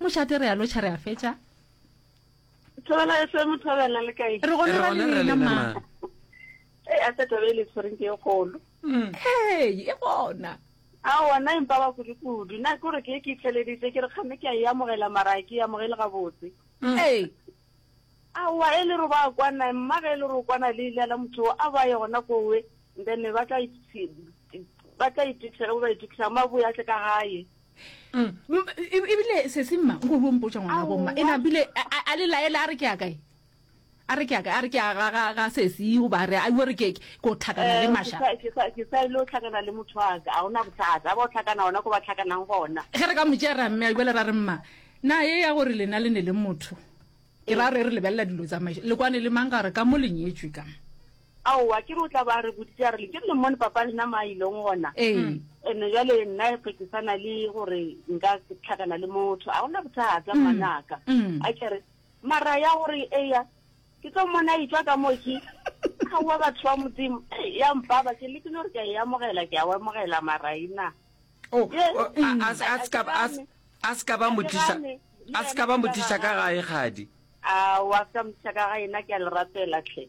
mošate re a lotšha re a fetša thobela fm thobela le kae re gone ra lena ma e a tseta be le tshwereng ke e golo mm. hey e gona a ona empa ba kudu kudu na ke gore ke e ke itlheleditse ke re kgame ke a e amogela mara ke e amogele gabotse mm. ee aowa e le re ba kwana mmaga e le re o kwana le ile la motho a ba ye gona kowe then ba tla ithuthega ba ba ithuthega maboya tle ka gae mm. ebile e sese mma nko o mpotsa ngwana go mma ena bile a le laela a re ke ya kae a re ke ya kae a re ke ya ga sese o ba re a iwe re ke ko tlhakana le eh, masha ke sa ile o tlhakana le motho wa ka a ona bothata ba o tlhakana ona ko ba tlhakanang gona ge re ka motšea ra mme a ibele ra re mma na ye ya gore lena le ne le motho ke ra re re lebelela dilo tsamaiso le kwane le mang ka gore ka mo lenyetswe ka aowa ke re o tla ba re boditse a re le ke le mmone papa lena ma ileng gona ee ene jale nna ge ke sana le gore nka tlhakana le motho a gona bothata mm. manaka mm. a kere mara ya gore eya ke tlo mmone a itswa ka moo ke kgaowa batho ba modimo ya mpaba ke lekile gore ke a e amogela ke a o amogela mara ena oh, oh, mm. a se ka ba motlisa a se ka ba motlisa ka gae gadi a wa se ka motlisa ka ga ena ke a le rapela tlhe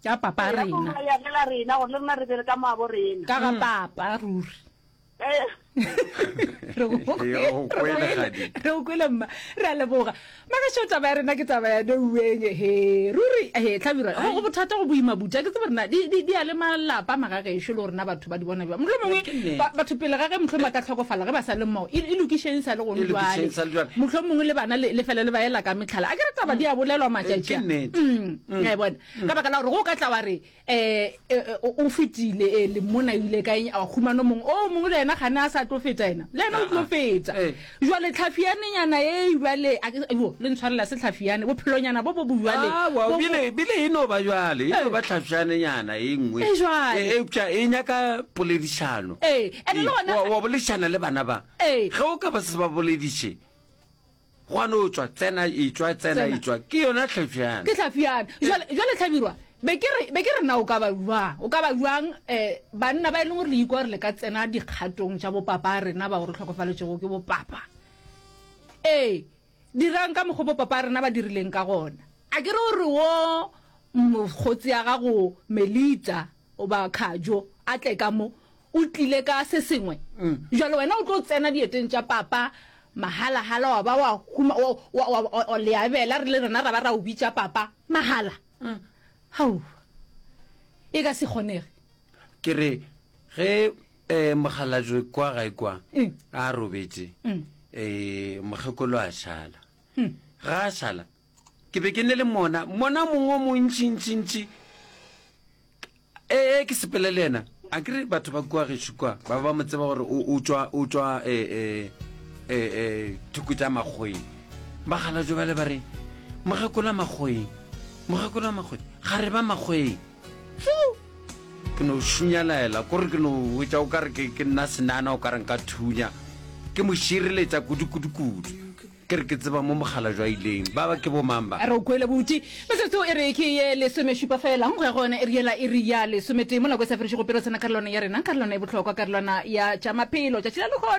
Ka papa rena. Ka papa ya gela rena gore le rena re bere ka moabo rena. Ka ga mm. papa ruri. Eh. Re o kwele gadi. Re o kwele mma. Re a leboga. Maka sho taba ya rena ke taba ya de ueng he. Ruri he tlhabira. Go bothata go boima buja ke tsebe rena di di a le malapa maga ge sho le rena batho ba di bona ba. Motho mongwe batho pele ga ge motho ma ka tlhokofala ge ba sa le mmo. E lokisheng sa le go ntlwa. Motho mongwe le bana le fela le ba ela ka metlhala. A ke re taba di a bolelwa matšatši. Ke nnete. Mm. mm. a bona mm. ka baka la gore go ka tla wa re um o fetile e le mona ebile ka eng a humano mongwe o mongwe le ena gane a sa tlo feta ena le ena o tlo ah, ah. feta eh. jale tlhafianenyana e jale jo le ntshwarela se tlhafiane bophelonyana bo bo bojalebile e no ba jale e ba tlhafianenyana e nngwe eupša e nyaka poledišano wa boledišana le bana ba ge o ka ba se ba bolediše Gwa no tšwa, tsena, etšwa, tsena, Tsena. etšwa. Ke yona Tlhafjana. Ke Tlhafjana. Jwale, jwale Tlhabirwa, be ke re, be ke re na o ka ba jwang, o ka ba jwang eh, banna ba e leng gore le ikwa gore le ka tsena dikgatong tša bopapa a rena bao re hlokofaletšego ke bopapa. Ee, dirang ka mokgwa bopapa a rena ba dirileng ka gona. A ke re o re wo mokgotsi a gago Melita goba Khajo a tle ka mo, O tlile ka se sengwe. Jwale wena o tlo tsena dieteng tša papa mahala-hala wa ba wa huma, wa, wa, wa, wa, wa leabela, re le rena ra ba ra o bitša papa mahala. Hau, e ka se kgonege. Ke re, ge eh, mokgalajwe kwa gae kwa a robetše, eh, mokgekolo a šala. Ga a šala, Ke be ke ne le mona, mona mongwe o montši, ntši, ntši. Ee, ke sepele le yena. A ke re batho ba kua gešo kwa, ba ba mo tseba gore o tšwa, o tšwa, e, e, e, e, thoko tša makgoeng. Ba gala jo bale ba re, mogakola makgoeng, mogakola makgoeng, ga re ba makgoeng. Fiu! Ke no šunyalaela, kore ke no wetša o ka re ke nna senana o ka reng ka thunya. Ke mo šireletša kudu, kudu, kudu. Ke re ke tseba mo mogala jwa ileng. Ba ba ke bo mang ba? A re o kwele buti. Metsotso e re ke ye lesomešupa fela go ya go yona e re yela iri ya lesometee mo nako e sa fedišego pelo tsena karolwana ya rena, karolwana e bohlokwa, karolwana ya tša maphelo, tšatši la lehono.